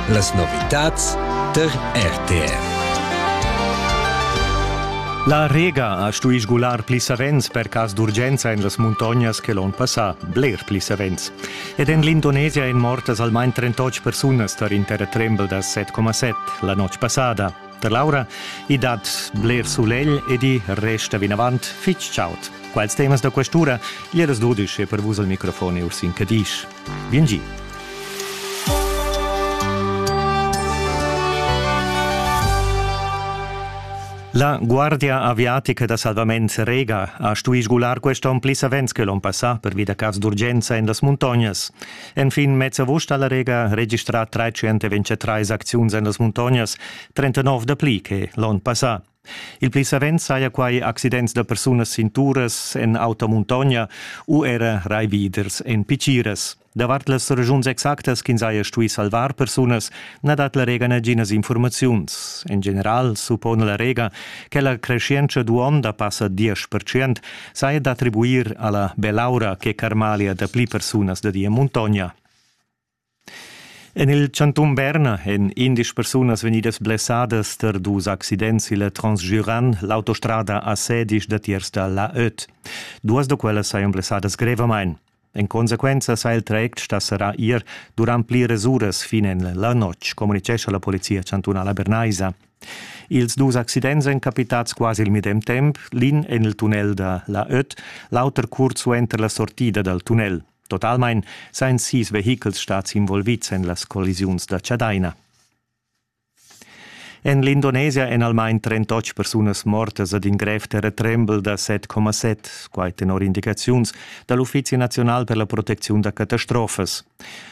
Las novitads tar RTR. La Rega ha stui sgular pli savens per cas d'urgenza en las muntognas che l'onn passà, bler pli savens. Ed en l'Indonesia èn mortas almain 38 persunas tar in terratrembel da 7,7 la notg passada. Per Laura i dat bler sulegl ed i resta vinavant fitg chaud. Quels temas da questura, Ieras Dudisch e per vus al microfon Ursin Cadisch. Biengi. La Guardia aviatica da salvament Rega ha stuì sgular quest onn pli savens che l'onn passà pervi da cas d'urgenza en las muntognas. Enfin mez avust ha la Rega registrà 323 acziuns en las muntognas, 39 dapli che l'onn passà. Il pli savens saja quai accidents da persunas sin turas, en auta muntogna u era raividers en pitschiras. Davart las regiuns exactas ch'ins haja stuì salvar persunas na dat la Rega naginas informaziuns. En general suppona la Rega che la creschientscha d'uonda passa 10% saja d'attribuir alla belaura che carmalia dapli persunas da di en muntogna. En il chantun Berna èn indesch persunas vegnidas blessadas tar dus accidents il Transgiuran. L'autostrada a Sedisch datiers da la Öt. Duas da quellas sajan blessadas grevamain. En consequenza sa il traject sta serrà ir durant pliras uras fin en la notg, communicescha la polizia chantunala bernaisa. Ils dus accidents èn capitads quasi il medem temp, l'in en il tunnel da la Öt, l'auter curt suenter la sortida dal tunnel. Totalmein sein sis vehichels stads involvids en las collisiuns da Chadaina. En l'Indonesia èn almain 38 persunas mortas ad in grev terratrembel da 7,7, quai tenor indicaziuns da l'Uffizi naziunal per la protecziun da catastrofas.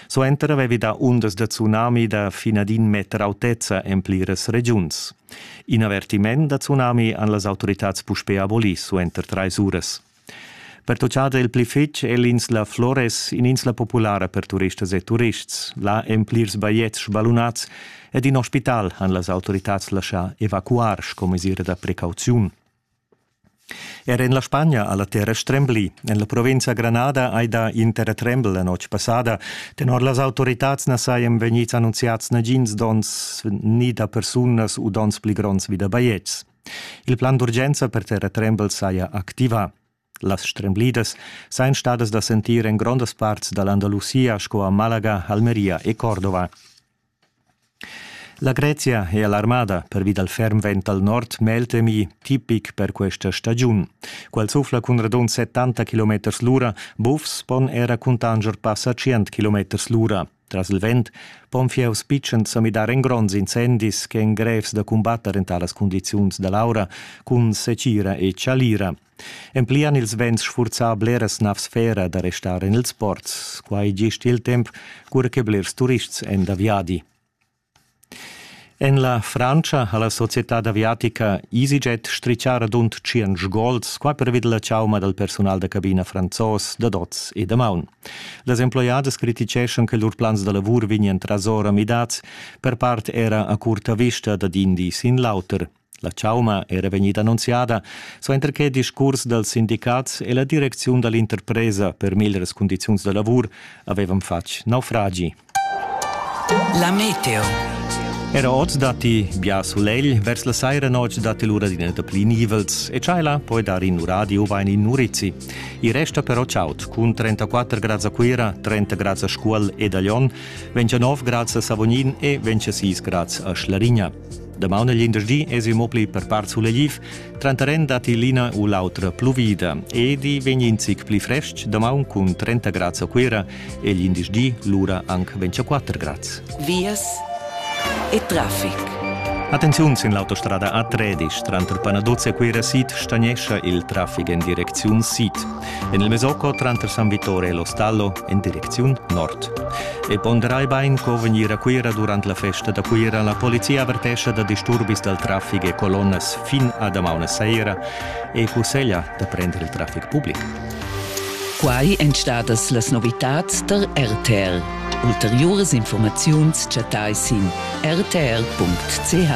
Suenter avevi dà undas da tsunami da fin ad in meter autezza en pliras regiuns. In avertiment da tsunami han las autoritads puspè abolì suenter trais uras. Pertutgada il pli fetg è l'insla Flores in'insla populara per turistas e turists. Là èn plirs bajetgs sballunads ed in ospital han las autoritads laschà evacuar sco mesira da precauziun. Er en la Spagna ha la terra strembli. En la provinza Granada hai dà in terratrembel la notg passada. Tenor las autoritads na sajan vegnids annunziads nagins donns ni da persunas u donns pli gronds vi da bajetgs. Il plan d'urgenza per terratrembel saja activà. Las stremblidas sajan stadas da sentir en grondas parts da l'Andalusia sco a Malaga, Almeria e Cordova. La Grezia è alarmada pervi dal ferm vent al nord meltemi, tipic per questa stagiun. Quel suffla cun radund 70 km l'ura, bufs pon era cuntanger passa 100 km l'ura. Tras il vent pon fieus pitschens sa midar en gronds incendis ch'èn grevs da cumbatter en talas cundiziuns da l'aura cun secira e chalira. Emplian ils vents sfurzà bleras navs fera da restar en ils ports. Quai gist il temp, cura che blers turists èn da viadi. En la Frantscha ha la societad aviatica EasyJet stritgà radund tschient gols qua pervi da la chauma dal persunal da cabina franzos dad oz e damaun. Las emploiadas criticheschan che lur plans da lavur vegnian trasora midads, per part era a curta vista dad in di sin l'auter. La chauma era vegnida annunziada suenter che discurs dals sindicats e la direcziun da l'interpresa per meglras cundiziuns da lavur avevan fatg naufragi. La meteo. Era oz datti bia sulegl, vers la saira notg datti l'ura d'ina pli nivels e tschajla poi dar in radio bain in Nurizzi. I resta però chaud, cun 34 grads a Cuira, 30 grads a Scuol ed a Lyon, 29 grads a Savognin e 26 grads a Schlarigna. Damaun e glindesdi esi mo pli per part sulegliv, tranteren datti l'ina u l'autra pluvida ed i vegn in zic pli frestg damaun cun 30 grads a Cuira e glindesdi lura anc 24 grads. Vias e traffic. Attenziun sin l'autostrada A13 tranter Panaduz e Cuira sid stagnescha il traffic en direcziun sid. en il Mesoco tranter San Vittore e Lo Stallo en direcziun nord. E ponderai bain co vegnir a Cuira durant la festa da Cuira. La polizia avertescha da disturbis dal traffic e colonnas fin a damaun saira e cusseglia da prender il traffic public. Quai èn stadas las novitads tar RTL. Ulteriuras informaziuns chattai sin rtl.ch.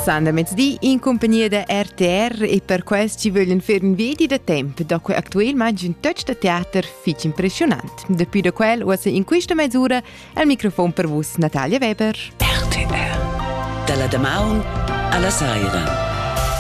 San da mezdi in compagnia da RTR e per quest ci vöglien fer un vedi da temp da quei actuel ma un touch da teater fitch impressionant. Depuis da quel uossa in questa mesura al microfon per vus Natalia Weber. RTR. Dalla damaun alla saira.